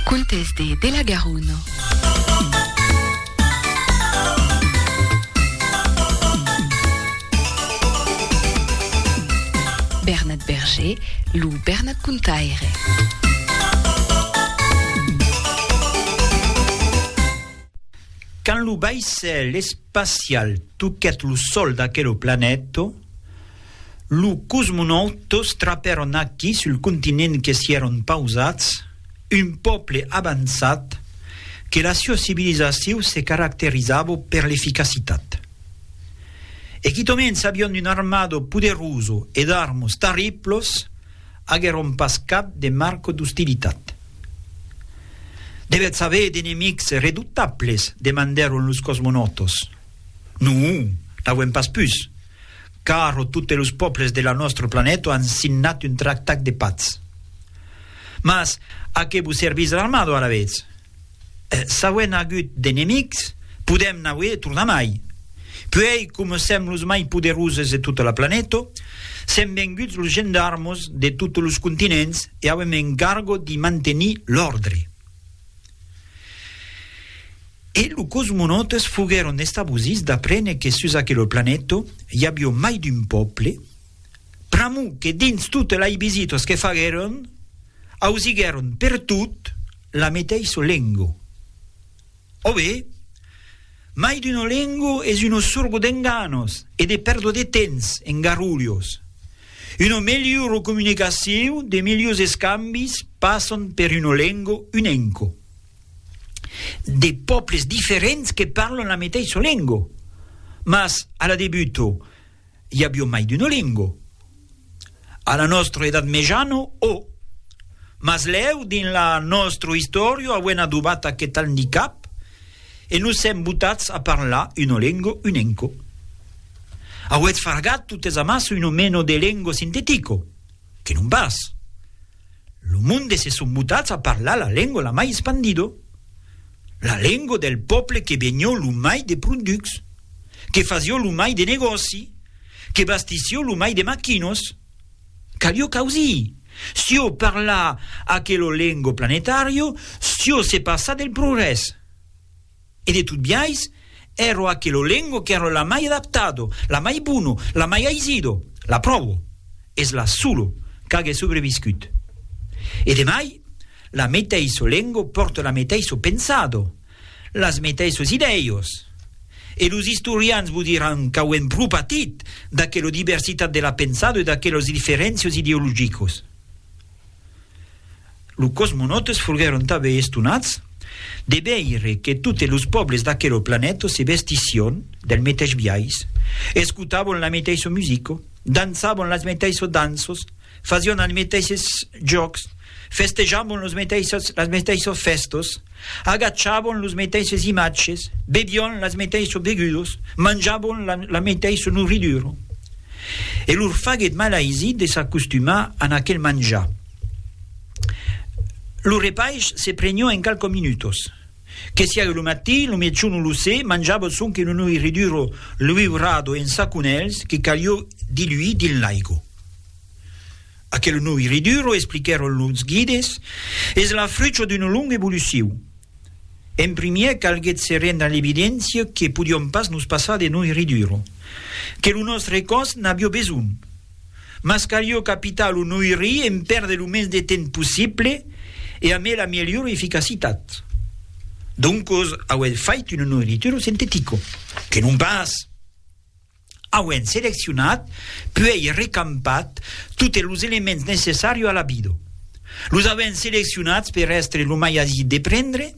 Contes de de la Garona. Bernat Berger, lo Bernat Contaire. Quand lo vaissèl espacial toquèt lo sòl d'aquelo planèto, Lo cosmonaut tous trapèron aquí sul continent que s'i èron pausats, un pòble avançat que la siua civilizaciu se caracterizavo per l'eficacitat. E quitament s'avion un armado poderuso e d'armos tarriplos, aguèron pas cap de marco d'ostilitat. Devètz aver d'enemics redutables? demandèron los cosmonautos. Non, n'auem pas pus. Caro totes los pòbles de la nòstre planèto an signat un tractat de patz. Mas a qué vos servís l'armado alavetz? S'auem agut d'enemics, podèm n'auer tornamai. Puèi, coma sèm los mai poderoses de tota la planèto, sèm venguts los gendarmos de totes los continents e auem encargo d'i mantenir l'òrdre. E lo cosmonautes foguèron estabosits d'aprene que sus aquelo planèto i avió mai d'un pòble, pr'amor que dins totes lai visitas que faguèron ausiguèron pertot la meteissa lengo. Ove? Mai d'una lengo es una sorgo d'enganos e de pèrdo de tens en garrulhos. Una melhora comunicacion, de melhors escambis passan per una lengo unenco. de pòbles diferents que parlan la meteissa lengo, mas a la debuto i avió mai d'uno lengo, a la nòstro edat mejano o. Mas lèu dins la nòstro istòrio auem adobat aqueth andicap e nos sèm botats a parlar uno lengo unenco. Auetz fargat totes amassa uno meno de lengo sintetico? Que non pas! Lo monde se son botats a parlar la lengo la mai espandido, la lengo del pòple que benhó lo mai de pronducs, que fasió lo mai de negòci, que bastissió lo mai de maquinos. Calió causir sió parlar aquelo lengo planetario sió se passar del progrès. E de tot biais, ero aquelo lengo qu'ero la mai adaptado, la mai bono, la mai aisido, l'apròvo, es la solo qu'age sobreviscut. E de mai, la meteiso lengo pòrte la meteiso pensado, las meteisos idèios. E los istorians vos diràn qu'auem pro patit d'aquelo diversitat de la pensado e d'aquelos diferéncios ideologicos. Los cosmonautes foguèron tanben estonats de veire que totes los pòbles d'aquela planeta se vestission del meteis biais, escotavan la meteissa musica, dançavan las meteissas danças, fasián els meteisses jòcs, festejavan las meteissas fèstas. Agachabon los meteisses imatges, bebion las meteissos begudos, manjabon la, la meteissa nourridura. E lor faguet mal aisit de s'acostumar a aquel manjar. Lo repaish se prenió en qualques minutos. Que siague lo matin, lo miejon o lo sé, manjabon sonque una nourridura luiurada en saconèls que calió diluir dins l'aigo. Aquel nuu iriduro, expliquèron los guides, es la frucha d'una longa evolucion. En primièr calguèt se rendre a l'evidéncia que podiom pas nos passar de nuu iriduro, que lo nòstre còs n'avió besonh. Mas calió capitar lo nuu iri en pèrder lo mens de temps possible e amé la melhora eficacitat. Doncos auèt fait un nuu irituro sintetico, que non pas! Auent seleccionat, puèi recampat totes los elements necessario a la bido. Los auent seleccionats per èstre lo mai aisit de prendre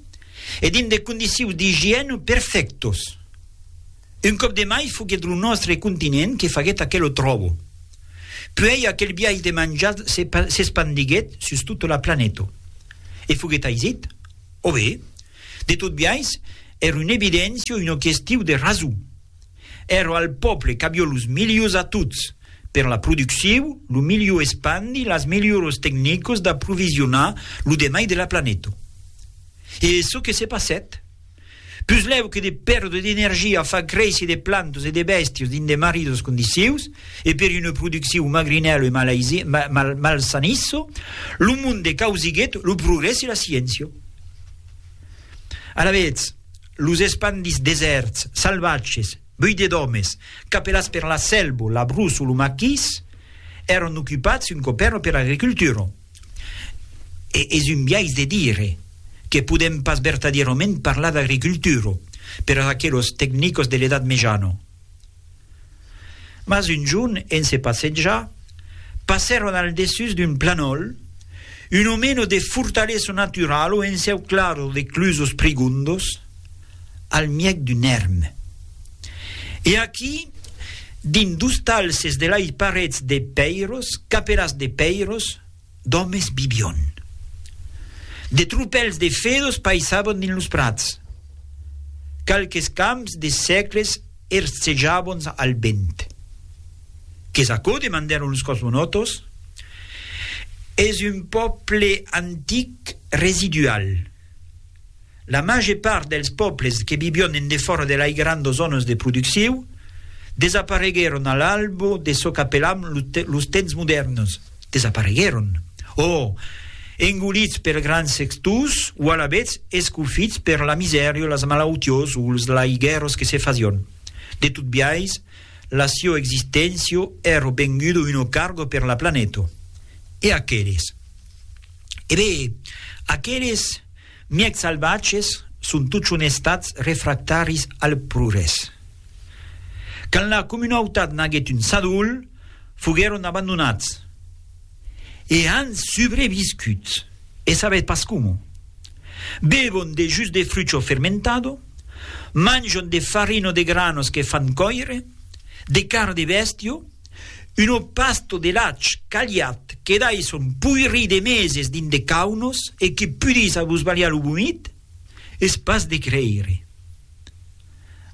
e dins de condicius d'igièna perfèctos. Un còp de mai foguèt lo nòstre continent que faguèt aquelo tròbo. Puèi aquel biais de manjats se s'espandiguèt sus tota la planeta. E foguèt aisit? Ove, de tot biais, èr una evidéncia o una questiu de rason. Èra al pòble qu'avió los milius atuts per la producciu, lo miliu espandi, las milioros tecnicos d'aprovisionar lo demai de la planeta. E çò que se passèt? Puslèu que de perdre d'energia a far créisser de plantas e de bèstias dins de maridas condicius e per una producciu magrinèla e malaisi, mal, malsanissa, lo monde causiguèt lo progrès e la sciéncia. Alavetz, los espandits desèrts, salvatges, buidés d'òmes, capelats per la sèlva, la bruç o lo maquís, èran ocupats un còp èra per l'agricultura. E es un biais de dire que podèm pas vertadièrament parlar d'agricultura per aqueles tecnicos de l'Edat Mejana. Mas un jorn, en se passejar, passèron al dessús d'un planòl un omeno de fortalesa naturala o enceuclada de clusos prigondos al mièg d'un èrm. E aquí, dins dos talses de lai parets de pèiros, capelas de pèiros, d'òmes bibion. De tropèls de fedos paissabon dins los prats. Qualques camps de sècles ercejabons al vent. Qu'es aquò, demandèron los cosmonòtos? Es un pòble antic residual. La màger part dels pòbles que vivión en defòra de lai grandos zònas de producciu desapareguèron a l'albo de çò qu'apelam los temps modèrns. Desapareguèron, o engolits per grands sextors, o alavetz escofits per la misèria, las malautiós o los lai guèrros que se fasión. De tot biais, la sió existéncia èra venguda una carga per la planeta. E aqueles? E ben, aqueles, Mièg salvatges son totjorn estats refractaris al progrès. Quand la comunautat naguèt un sadol, foguèron abandonats e an subreviscut, e sabètz pas coma? Bevon de jus de frucho fermentado, manjon de farino de granos que fan còire, de carn de bèstia, Uno pasto de lach caliat que dai son poiri de meses dins de caunos e que pudís abusbalhar lo vomit? Es pas de creire.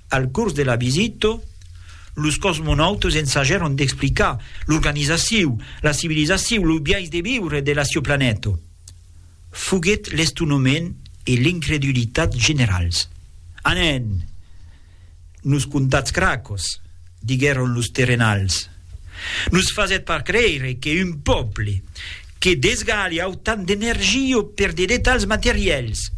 Al cors de la visita, los cosmonautas ensajèron d'explicar l'organizaciu, la civilizaciu, lo biais de viure de la sieu planeta. Foguèt l'estonhament e l'incredulitat generals. Anen! Nos contatz cracos! diguèron los terrenals. Nos fasètz pas creire que un pòble que desgalha autant d'energia per de detalhs materiels,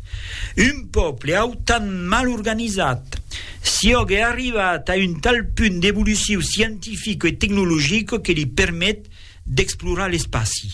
un pòble autant mal organizat, siògue arribat a un tal punt d'evoluciu scientifica e tecnologica que li permet d'explorar l'espaci.